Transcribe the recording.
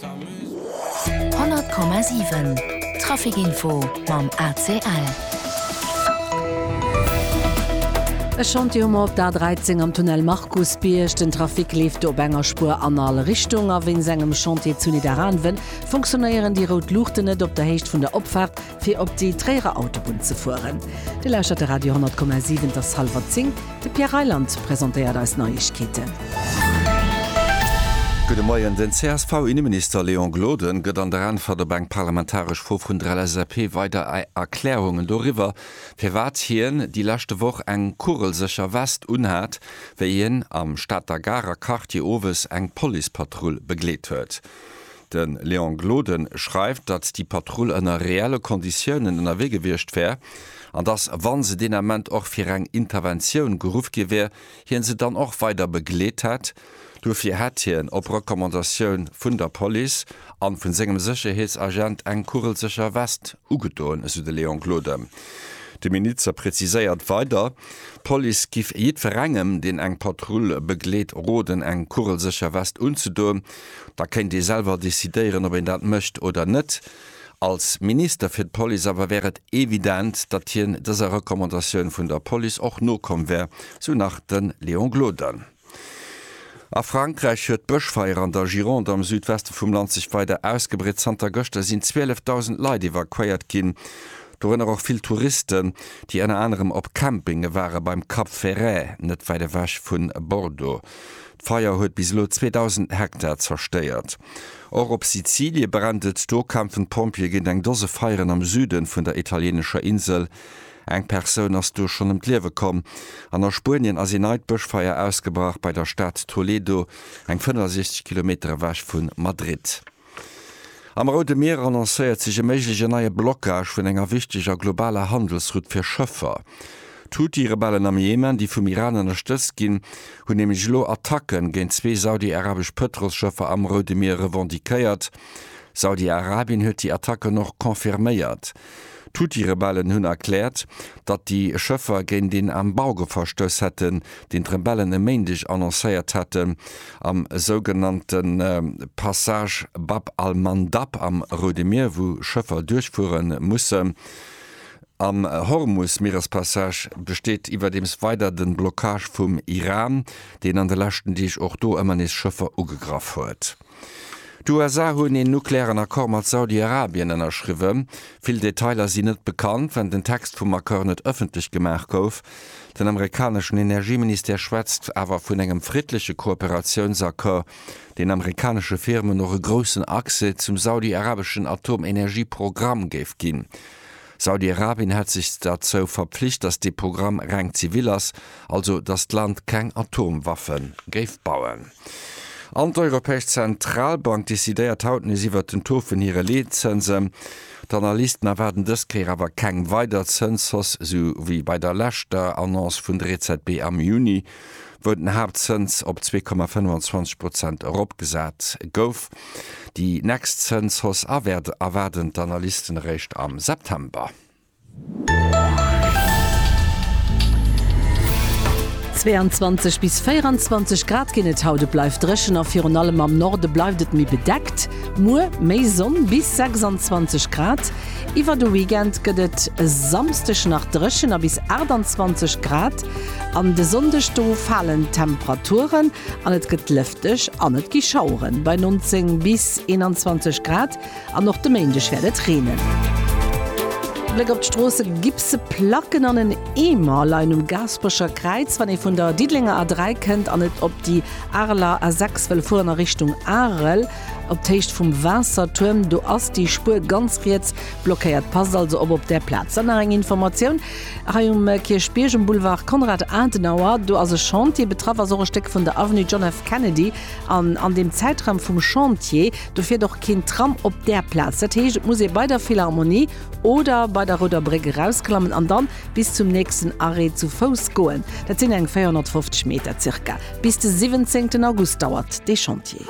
100,7 Trafic Info mam ACL. E Chantier hu mer op der A13 am Tunnel Markusbierg. Den Trafic leeft do op enger Spuer an all Richtung a wéinst engem Chantier zu Nidderaanwen funktionéieren déi rout Luuchten net op der Héicht vun der Opfaart fir op déi Tréierer Autobunn ze fueren. Dir lauschtert de Radio 10,7, et ass hallwer 10, de Pierre Reyland presentéiert eis Neiegkeeten. Gudde Moien, Den CSV-Inneminister Léon Gloden gëtt an der Äntwert op eng parlamentaresch Fro vun der LSAP weider Erklärungen doriwwer, firwat hien déi leschte Woch eng kugelsécher West unhat, wéi hien am Stater Garer Quartier owes eng Policepatrull begleet huet. De Léon Gloden schreift, datt déi Patrull ënner reelle Konditiounen ënnerwee gewiescht wär, an datt, wa se deen Ament och fir eng Interventioun geruff gi wär, hie se dann och weider begleet hätt. Duerfir hätt hien op Recommandatioun vun der Police a vu sengem Sécherheetsagent eng kugelsécher West ugedoen, esou de Léon Gloden. De Minister preziséiert weider, d'Police giff jiddwerengem, deen eng Patrull begleet, roden, eng kugelsécher West unzedoen. Da kéint ee selwer decidéieren, ob een dat mécht oder net. Als Minister fir d'Police awer wär et evident, datt hien dëser Recommandatioun vun der Police och nokomm wär, sou nach de Léon Gloden. A Frankräich huet d'Bëschfeier an der Gironde am Südweste vum Land sech weider ausgebreet. Zanter gëschter sinn 12.000 Leit evakuéiert ginn, dorënner och vill Touristen, déi ënner anerem op Campinge ware beim Cap Ferret, net wäit ewech vu Bordeaux. D'Feier huet bis elo 2.000 Hektar zerstéiert. Och op Sizilie brennt et, do kämpfen d'Pompjeeë géint eng Dose Feieren am Süde vun der italieenescher Insel. Eng Persoun ass do schonn ëm d'Liewe komm. An a Spuenien ass ee neit Bëschfeier ausgebrach bei der Stad Toledo, eng 65 Kilometer ewech vu Madrid. Am Roude Mier annoncéiert sech e méigleche neie Blockage vun enger wichteger globaler Handelsroute fir Schëffer. D'Huthi-Rebellen am Jemen, déi vum Iran ënnerstëtzt ginn, hunn nämlech elo Attacke géint zwee saudi-arabesch Pëtrolsschëffer am Roude Mier revendiquéiert. Saudi-Arabien huet déi Attacken och confirméiert. D'Houthi-Rebellen hunn erkläert, datt déi Schëffer géint een Embargo verstouss hätten, deen d'Rebellen e Méindeg annoncéiert haten, am sougenannte Passage Bab al-Mandab am Roude Mier, wou Schëffer duerchfuere mussen. Am Hormus-Mierespassage besteet iwwerdeems weider de Blockage vum Iran, deen an de leschten Deeg och do ëmmer nees Schëffer ugegraff huet. D'USA hunn een nuklearen Accord mat Saudi-Arabien ënnerschriwwe. Vill Detailer sinn net bekannt, well den Text vum Accord net ëffentlech gemaach gouf. Den amerikaneschen Energieministère schwätzt awer vun engem friddleche Kooperatiounsaccord, deen amerikanesche Firmen och e groussen Accès zum saudi-arabeschen Atomenergieprogramm géif ginn. Saudi-Arabien hätt sech derzou verpflicht, datt dee Programm reng zivil ass, also datt d'Land keng Atomwaffe géif bauen. An d'Europäesch Zentralbank decidéiert haut nees iwwert den Taux vun hire Leetzënsen. D'Analysten erwaarden dës Kéier awer keng weider Zënshausse, sou wéi bei der leschter Annonce vun der EZB am Juni. wou den Haaptzëns op 2,25 Prozent eropgesat gouf. Déi nächst Zënshausse erwaarden d'Analysten eréischt am September. 22 bis 24 Grad ginn et haut, et bleift dréchen a virun allem am Norde bleift et méi bedeckt. Muer méi Sonn, bis 26 Grad. Iwwer de Weekend gëtt et e Samsdeg nach dréchen a bis 28 Grad. An de Sonndeg do falen d'Temperaturen an et gëtt lëfteg an et gi Schauere bei 19 bis 21 Grad an och de Méindeg wäert et reenen. Bléck op d'Stroosse, Gipse Placken an en Eemer leien um Gaasperecher Kräiz. Wann ee vun der Diddelenger A3 kënnt an et op déi Areler A6 wëll fueren a Richtung Arel op d'Héicht vum Waassertuerm, do ass déi Spuer ganz riets blockéiert. Passt also op op där Plaz. Dann nach eng Informatioun, Hei um Kierchbierg um Boulevard Konrad Adenauer, do ass e Chantier. Betraff ass och e Stéck vun der Avenue John F. Kennedy. An an deem Zäitraum vum Chantier, do fiert och keen Tram op där Plaz. Dat heescht, et muss ee bei der Philharmonie oder bei der Rouder Bréck erausklammen an dann bis zum nächsten Arrêt zu Fouss goen. Dat sinn eng 450 Meter circa. Bis de 17 August dauert dee Chantier.